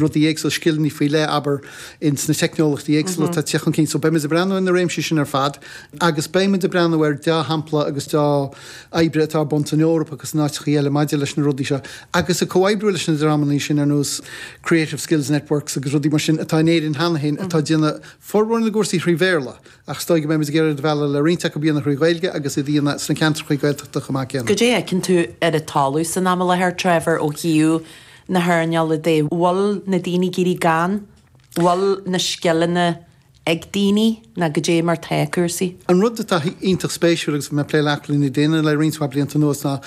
rudaí éagsúla, scileanna faoi leith, abair, in sna teicneolachtaí éagsúla atá ag teacht chun cinn. So beimid ag breathnú ar na réimsí sin ar fad agus beimid ag breathnú ar dhea-shampla agus dea-obair atá ar bun san Eoraip agus in áiteachaí eile maidir leis na rudaí seo agus ag comhoibriú leis na dreamannaí sin ar nós Creative Skills Networks agus rudaí mar sin atá in Éirinn cheana féin atá ag déanamh formhór na gcúrsaí thrí Bhéarla ach is dóigh go mbeimid ag iarraidh iad a mhealladh le roinnt acu a dhéanamh thrí Ghaeilge agus iad a dhéanamh sna ceantrachaí Gaeltachta chomh maith céanna. Goidé fheiceann tú ar an talamh san am i láthair, Trevor, ó thaobh na hearnála de an bhfuil na daoine ag ag éirí gann an bhfuil na scileanna ag daoine nó goidé mar tá cúrsaí. An rud atá iontach spéisiúil agus mé plé le hathlánú daoine le roinnt mhaith blianta anuas ná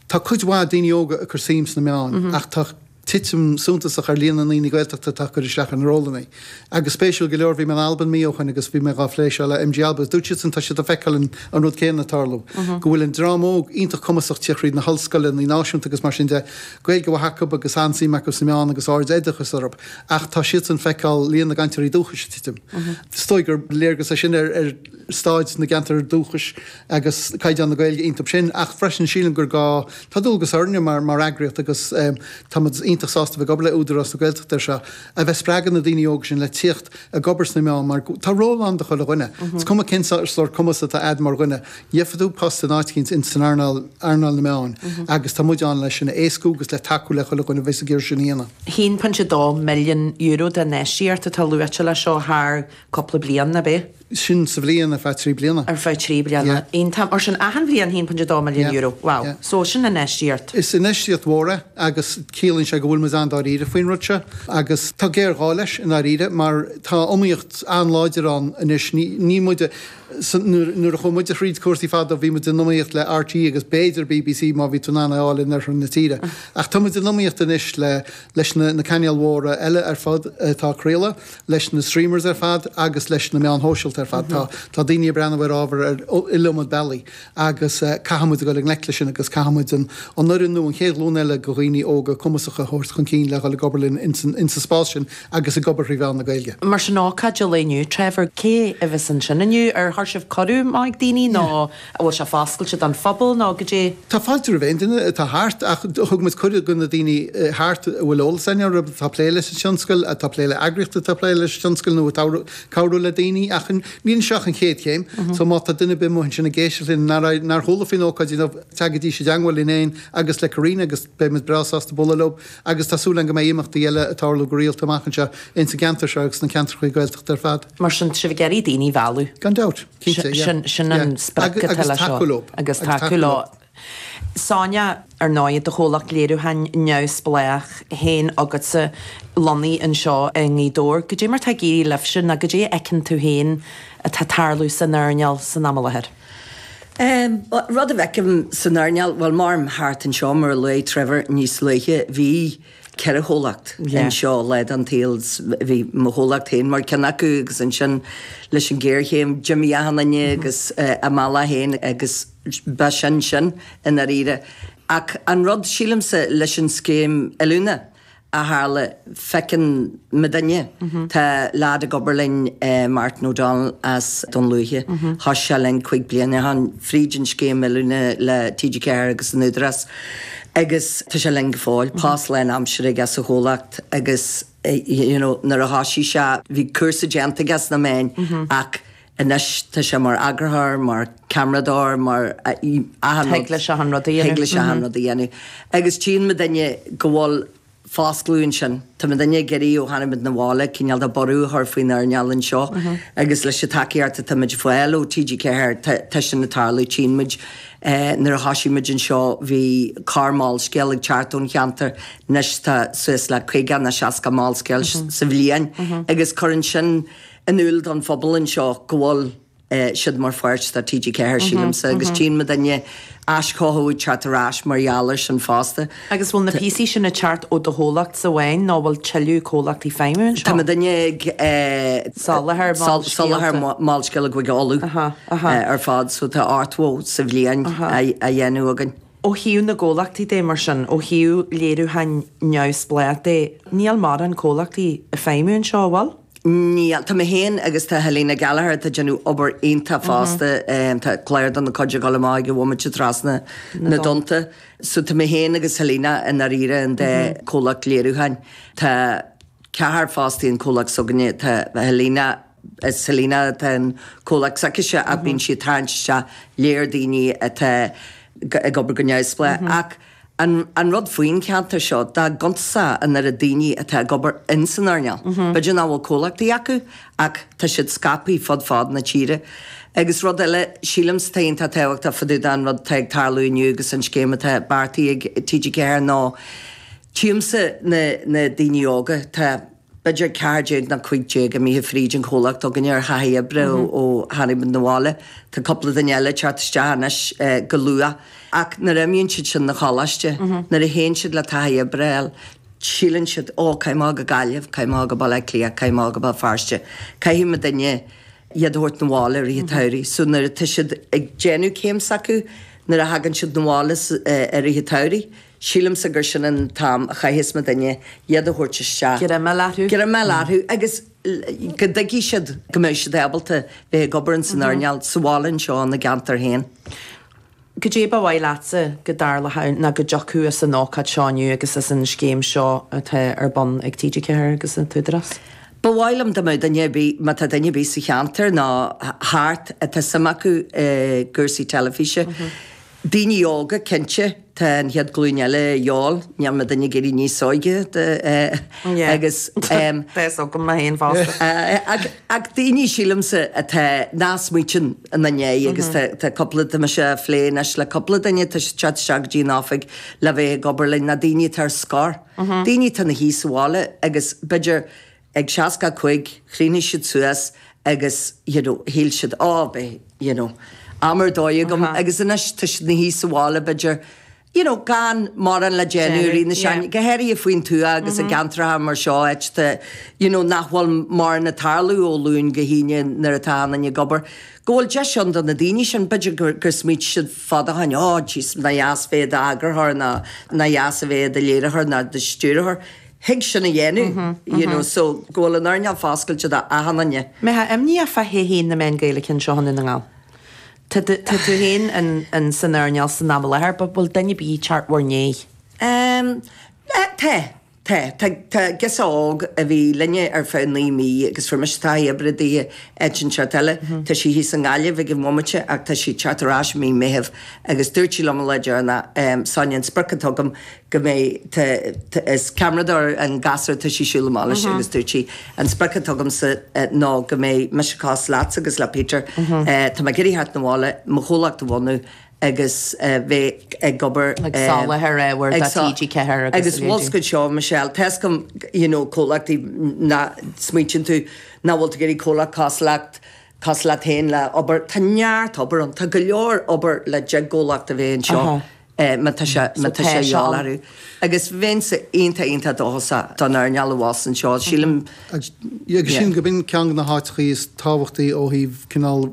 tá cuid mhaith daoine óga ag cur suim sna meáin ach tá titim suntasach ar líon na ndaoine Gaeltachta atá ag cur isteach ar na rólanna. Agus spéisiúil go leor, bhí mé in Albain mí ó shoin agus bhí mé dhá phlé seo le MG Alba agus dúirt siadsan tá siad ag feiceáil an an rud céanna ag tarlú, go bhfuil an dream óg iontach cumasach tíocht thríd na hollscoileanna náisiúnta agus mar sin de, Gaeilge mhaith acu agus an-suim acu sna meáin agus ardoideachas orthu ach tá siadsan feiceáil líon na gcainteoirí dúchais ag titim. Is dóigh gur léargas é sin ar ar staid na gceantar dúchais agus caighdeán na Gaeilge iontub sin ach freisin sílim gur gá, tá dualgas orainne mar mar eagraíocht agus eh, táimid iontach sásta a bheith ag obair le Údarás na Gaeltachta ar seo, a bheith spreagadh na daoine óga sin le tíocht ag obair sna meáin mar tá ról ann do chuile dhuine. Is cuma cén sórt cumas atá a'd mar dhuine, gheobhaidh tú post in áit éicint in san earnáil, earnáil na meáin agus tá muid ann le sin a éascú agus le tacú le chuile dhuine a bheas ag iarraidh sin a dhéanamh. €1.2 milliún d'infheistíocht atá luaite leis seo thar cúpla bliain, ab é? sin sa bhliain, ar feadh trí bliana. ar feadh trí bliana. Yeah. Iontach. Mar sin, achan bhliain, €1.2 Yeah, milliún. Wow. yeah. So, sin infheistíocht. Is infheistíocht mhór é agus ciallaíonn sé go bhfuilimid an-dáiríre faoin rud seo agus tá géarghá leis, i ndáiríre, mar tá iomaíocht an-láidir ann anois. Ní, ní muid a. san, nuair, nuair a chuaigh muide thríd cúrsaí fadó, bhí muid in iomaíocht le RTÉ agus b'fhéidir BBC má bhí tú in ann é a fháil in oirthear na tíre. Ach táimid in iomaíocht anois le, leis na, na cainéil mhóra eile ar fad atá ag craoladh. leis na streamers ar fad agus leis na meáin shóisialta ar fad. Tá daoine ag breathnú ar ábhar ar iliomad bealaí agus caithfimid a dhul i ngleic leis sin agus caithfimid an fhoireann nua, an chéad ghlúin eile de dhaoine óga cumasacha a thabhairt chun cinn le dhul ag obair linn insa spás sin agus ag obair thrí mheán na Gaeilge. Mar sin, ócáid de lae inniu, Trevor, cé a bheas ansin inniu? Ar chuir sibh cuireadh amach ag daoine nó? An bhfuil sé foscailte don phobal nó goidé? Tá fáilte roimh aon duine atá thart ach thug muid cuireadh do na daoine thart a bhfuil eolas acu ar atá ag plé leis an tionscal, atá ag plé le eagraíochtaí atá ag plé leis an tionscal nó atá ag cabhrú le daoine ach níl anseo ach an chéad chéim so má tá duine ar bith amuigh ansin ag éisteacht linn nár chuala faoin ócáid inniu teagaidís i dteagmháil linn fhéin agus le Karina agus beidh muid breá sásta bualadh leo agus tá súil againn go mbeidh imeachtaí eile ag tarlú go rialta amach anseo insa gceantar seo agus sna ceantrachaí Gaeltachta ar fad. Mar sin, sibh ag iarraidh daoine a mhealladh? Gan dabht. Cinnte, yeah. Sin, sin an Yeah. sprioc Agus- atá agus leis seo. tacú leo. Agus Agus tacú tacú leo. leo. Sonia, ar ndóigh, do chomhlacht léiriúcháin neamhspleách féin agatsa lonnaithe anseo i nGaoth Dobhair. goidé mar atá ag éirí libhse nó goidé a fheiceann tú féin atá ag tarlú san earnáil san am i láthair? Ehm, rud a bhfeicim san earnáil, bhuel, mairim thart anseo, mar a luaigh Trevor níos luaithe, bhí, ceithre chomhlacht anseo lá den tsaol, bhí mo chomhlacht féin mar ceann acu agus ansin leis an géarchéim d'imigh achan duine againn a mbealach féin agus ba sin sin i ndáiríre. Ach an rud, sílimse, leis an scéim oiliúna a tharla, feiceann mo duine, tá lead ag obair linn Martin O'Donnell as Dún Lúiche, thoisigh sé linn cúig bliana ó shin fríd an scéim oiliúna le TG4 agus an Údarás, agus tá sé linn go fóill, post lánaimseartha aige sa chomhlacht agus you know nuair a thoisigh sé bhí cúrsa déanta aige sna meáin ach anois tá sé mar eagarthóir, mar ceamaradóir, mar achan rud. Thig leis achan rud a dhéanamh. Thig leis achan rud a dhéanamh agus tchíonn mo duine go bhfuil foscladh ansin. Tá muidinne ag iarraidh ó tháinig muid 'na bhaile cineál de bhorradh a chur faoin earnáil anseo agus leis an tacaíocht atá muid ag fáil ó TG4 tá sin ag tarlú. Tchíonn muid nuair a thosaigh muid anseo bhí corr Molscéal ag teacht ón cheantar anois tá suas le caoga ná seasca Molscéal sa bhliain agus cuireann sin in iúl don phobal anseo go bhfuil siad mar pháirt de TG4, sílimse, agus tchíonn mo dhuine aischothú ag teacht ar ais mar gheall air sin fosta. Agus bhfuil na píosaí sin ag teacht ó do chomhlacht amháin nó bhfuil tuilleadh comhlachtaí ag feidhmiú anseo? Tá muidinne ag soláthar Molscéalta do Chúige Uladh ar fad so tá ochtó sa bhliain á dhéanamh againn. Ó thaobh na gcomhlachtaí de, mar sin, ó thaobh léiriúcháin neamhspleách de, níl mórán comhlachtaí ag feidhmiú anseo, an bhfuil? Níl. Tá mé féin agus tá Helena Gallagher atá ag déanamh obair iontach fosta, tá clár dá cuid ag dul amach ag an bhomaite trasna na dtonnta. So tá mé féin agus Helena i ndáiríre an dá chomhlacht léiriúcháin. Tá ceathrar fostaithe i gcomhlacht s'againne, tá Helena, Is Helena atá i gcomhlacht s'aicise ach bíonn sí ag tarraingt isteach léar daoine atá ag obair go neamhspleách. Ach an rud faoin cheantar seo, dá gcuntasá an oiread daoine atá ag obair ins an earnáil, b'fhéidir nach bhfuil comhlachtaí acu ach tá siad scaipthe fud fad na tíre. Agus rud eile, sílimse atá iontach tábhachtach fá dtaobh den rud atá ag tarlú inniu agus an scéim atá beartaithe ag TG4 ná tchímse na daoine óga. Tá. B'fhéidir 14 nó 15 imithe fríd an chomhlacht againne ar thaithí oibre ó tháinig muid 'na bhaile. Tá cúpla duine eile ag teacht isteach anois go luath. Ach nuair a imíonn siad sin 'na choláiste, nuair a théann siad le taithí oibre a fháil, síleann siad, 'Ó, caithfidh mé a dhul go Gaillimh, caithfidh mé a dhul go Baile Átha Cliath, caithfidh mé a dhul go Béal Feirste. Caithfidh muidinne iad a thabhairt 'na bhaile i rith an tsamhraidh. So nuair atá siad ag déanamh céim s'acu, nuair a thagann siad 'na bhaile i rith an tsamhraidh, Sílimse gur sin an t-am a chaithfeas muidinne iad a thabhairt isteach. Greim orthu. Greim orthu agus go dtuigfidh siad go mbeidh siad ábalta bheith ag obair ins an earnáil sa bhaile anseo ina gceantar féin. Goidé ba mhaith leatsa go dtarlódh ann ná go dtiocfadh as an ócáid seo inniu agus as an scéim seo atá ar bun ag TG4 agus an tÚdarás. Ba mhaith liom dá mbeadh duine ar bith, má tá duine ar bith sa cheantar ná thart atá suim acu i gcúrsaí teilifíse, Daoine óga, cinnte, tá an chéad ghlúin eile a dhíobháil, níl muidinne ag éirí níos óige agus em. Tá 's agam mé féin fosta. Ach ach daoine sílimse atá nach smaoitíonn ina ndiaidh agus tá tá cúpla, tá mise a' phlé anois le cúpla duine atá ag teacht isteach go dtí an oifig le bheith ag obair linn, na daoine atá ar scor, daoine atá ina shuí sa bhaile agus b'fhéidir, ag seasca cúig, chríochnaigh siad suas agus you know shíl siad oh bhí you know am ar dóigh agam agus anois tá siad na shuí sa bhaile b'fhéidir you know gan mórán le déanamh rith na seachtaine go háirithe faoin tuath agus i gceantracha mar seo áiteanna you know nach bhfuil mórán ag tarlú ó Luan go hAoine nuair atá achan duine ag obair go bhfuil deis ann do na daoine sin b'fhéidir gur gur smaoitigh siad fad ó shin oh jeez nach dheas bheith i d'eagarthóir nó nach dheas a bheith i do léiritheoir nó do stiúrthóir thig sin a dhéanamh you know so go bhfuil an earnáil foscailte do achan duine. An mbeadh imní ort fá thodhchaí na meán Gaeilge anseo i nDún na nGall. Tá tú tá tú féin in in san earnáil san am i láthair but bhfuil duine ar bith ag teacht in bhur ndéidh? Em eh tá tá tá tá girseach óg a bhí linne ar feadh naoi mí agus fuair mise taithí oibre daoithe i gceantar eile tá sí thíos i nGaillimh ag an bhomaite ach tá sí ag teacht ar ais i mí Meithimh agus dúirt sí liom lá deireanach em Sonia an sprioc atá agam go mbeidh, tá, is ceamaradóir an gasúr, tá sí ag siúl amach leis agus dúirt sí, an sprioc atá agamsa ná go mbeidh mise cosúil leatsa agus le Peter, tá mé ag iarraidh theacht 'na bhaile, mo chomhlacht a bhunú agus bheith ag obair, Ag soláthar ábhair do TG4 agus agus bhfuil 's agat seo Michelle, tá 's agam you know comhlachtaí ná smaoitíonn tú nach bhfuil tú ag iarraidh comhlacht cosúil leat, cosúil leat féin le obair, tá neart obair ann, tá go leor obair le deich gcomhlacht a bheith anseo. é má tá sé má tá sé á lárú. Agus bheinnse iontach iontach dóchasach don earnáil abhus anseo, sílim. Agus sílim go b'in ceann de na háiteachaí is tábhachtaí ó thaobh cineál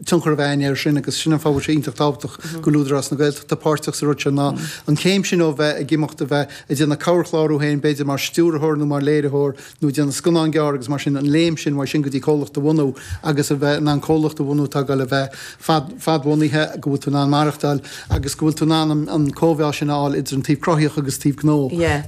tionchar a bheith againn air sin agus sin an fáth go bhfuil sé iontach tábhachtach go bhfuil Údarás na Gaeltachta páirteach sa rud seo ná an chéim sin ó bheith ag imeacht a bheith ag déanamh corrchlár thú féin b'fhéidir mar stiúrthóir nó mar léiritheoir nó déanamh scannán gearr agus mar sin an léim sin uaidh sin go dtí comhlacht a bhunú agus a bheith in ann comhlacht a bhunú atá ag dul a bheith fadbhunaithe, go bhfuil tú in ann maireachtáil agus go bhfuil tú in ann an chomheá sin a fháil idir an taobh cruthaíoch agus taobh gnó.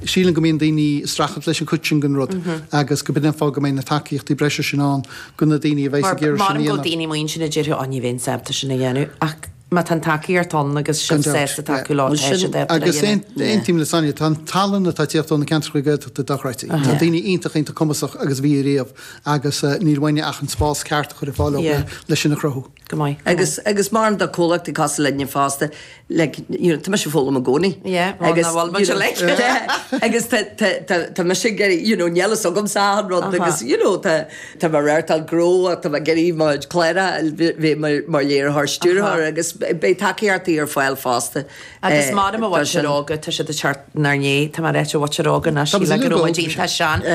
Sílim go mbíonn daoine ag streachailt leis an chuid sin den rud agus go mb'fhearr go mbeidh na tacaíochtaí breise sin ann do na daoine a bheidhs ag iarraidh sin a dhéanamh. Mar go mbíonn daoine amuigh ansin a déarfadh 'Á ní bheinn sábhálta sin a dhéanamh ach. má tá an tacaíocht ann agus sibh sásta tacú leo, tá siad ábalta é a dhéanamh. Agus aontaím le Sonia, tá an tallann atá ag teacht ó na ceantracha Gaeltachta dochreidte. Tá daoine iontach, iontach cumasach agus bhí ariamh agus níl uainn ach an spás ceart a chur ar fáil dóibh le sin a chruthú. Go maith. Agus má bhíonn do chomhlacht ag casadh linne fosta, like, you know, tá mise ag foghlaim i gcónaí. Yeah, well, now all about you, like. Agus tá mise ag, you know, níl a fhios agamsa achan rud agus, you know, tá, Tá mé ag reáchtáil gnó ach tá mé ag déanamh mo chuid cláracha a bhí mé mar léiritheoir, stiúrthóir agus beidh tacaíochtaí ar fáil fosta. Agus maidir leis an mhuintir óga, tá siad ag teacht inár ndiaidh, tá mé ag ráit an mhuintir óga, ní shílim go bhfuil muid iontach sean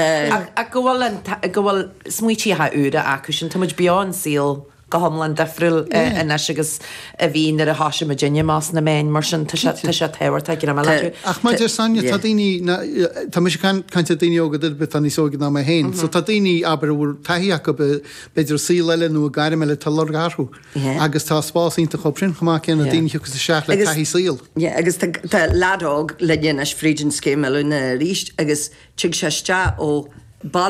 ach go bhfuil go bhfuil smaointíocha úra acu sin, tá muid beo i saol. go hiomlán difriúil anois agus a bhí nuair a thoisigh muidinne amach sna meáin, mar sin tá sé tábhachtach go raibh mé le. Ach mar a deir Sonia, tá daoine, tá mise ag caint ar daoine óga, duine ar bith atá níos óige ná mé féin, so tá daoine abair a bhfuil taithí acu b'fhéidir i saol eile nó i gairm eile tá luach orthu agus tá spás iontu dóibh sin chomh maith céanna daoine a thiocfas isteach le taithí saoil. Yeah agus tá lead óg linn anois fríd an scéim oiliúna arís agus tig sé isteach ó